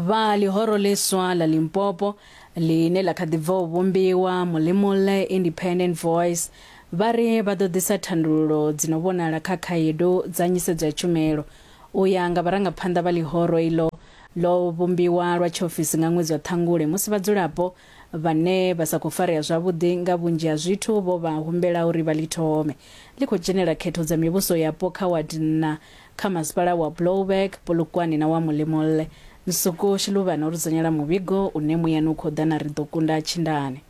vha ḽihoro ḽiswa ḽa limpopo ḽine ḽa kha ḓi bva u vhumbiwa mulimulle independent voice vha ri vha ḓo ḓisa thandululo dzi no vhonala kha khaedu dza nyisedzo ya tshumelo u ya nga vharangaphanḓa vha ḽihoro iḽo ḽo vhumbiwa lwa tshiofisi nga ṅwedzi wa ṱhangule musi vhadzulapo vhane vha sa khou farea zwavhuḓi nga vhunzhi ha zwithu vho vha humbela uri vha ḽi thome ḽi khou dzhenela khetho dza mivhuso yapo kha wadi nna kha masipala wa Blouberg, Polokwane na wa Mollemolle, Nsuko, Shiluvhane o ri dzudzanyela muvhigo une muyani u khou ḓa na Ri ḓo kunda Tshindane.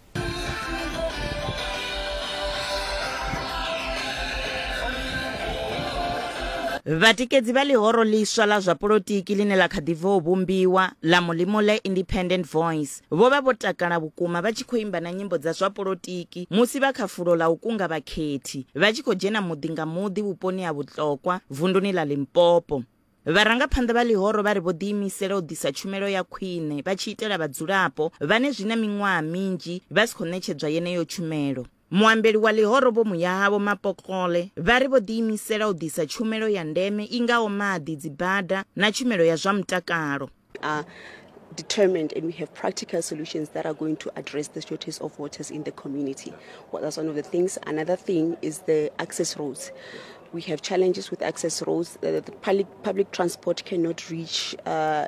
Vhatikedzi vha ḽihoro ḽiswa ḽa zwa polotiki ḽine ḽa kha ḓi bva u vhumbiwa, ḽa Mollemolle Independent Voice, Vho vha vho takala vhukuma vha tshi khou imba na nyimbo dza zwa polotiki musi vha kha fulo ḽa u kunga vhakhethi, vha tshi khou dzhena muḓi nga muḓi vhuponi ha Vhutlokwa, vunduni ḽa Limpopo. Vharangaphanḓa vha ḽihoro vha ri vho ḓiimisela u ḓisa tshumelo ya khwine vha tshi itela vhadzulapo vhane zwi na miṅwaha minzhi vha si khou ṋetshedzwa yeneyo tshumelo. Muambeli wa ḽihoro Vho Muyahavho Mapokgole vha ri vho ḓiimisela u ḓisa tshumelo ya ndeme i ngaho maḓi, dzibada na tshumelo ya zwa mutakalo. determined and we have practical solutions that are going to address the shortage of waters in the community. Well, that's one of the things. Another thing is the access roads. We have challenges with access roads. Uh, the public, public transport cannot reach uh,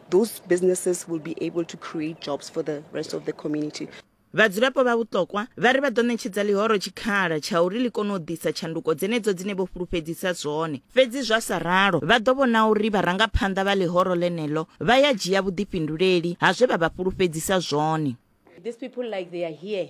Those businesses will be able to create jobs for the rest of the community. Vhadzulapo vha Vhuṱokwa vha ri vha ḓo ṋetshedza ḽihoro tshikhala tsha uri ḽi kone u ḓisa tshanduko dzenedzo dzine vho fhulufhedzisa zwone. Fhedzi zwa sa ralo, vha ḓo vhona uri vharangaphanḓa vha ḽihoro ḽeneḽo vha ya dzhia vhuḓifhinduleli ha zwe vha vha fhulufhedzisa zwone. These people like they are here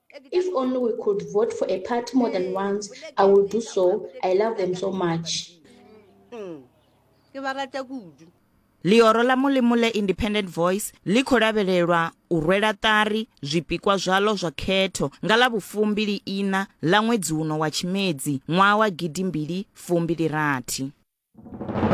If only we could vote for a party more than once, I will do so. I love them so much. Mm. ḽioro ḽa mulimu ḽe independent voice ḽi khou lavhelelwa u rwela ṱari zwipikwa zwaḽo zwa khetho nga ḽa vhufumbili ina ḽa ṅwedzi uno wa tshimedzi ṅwaha wa gidimbili fumbili rathi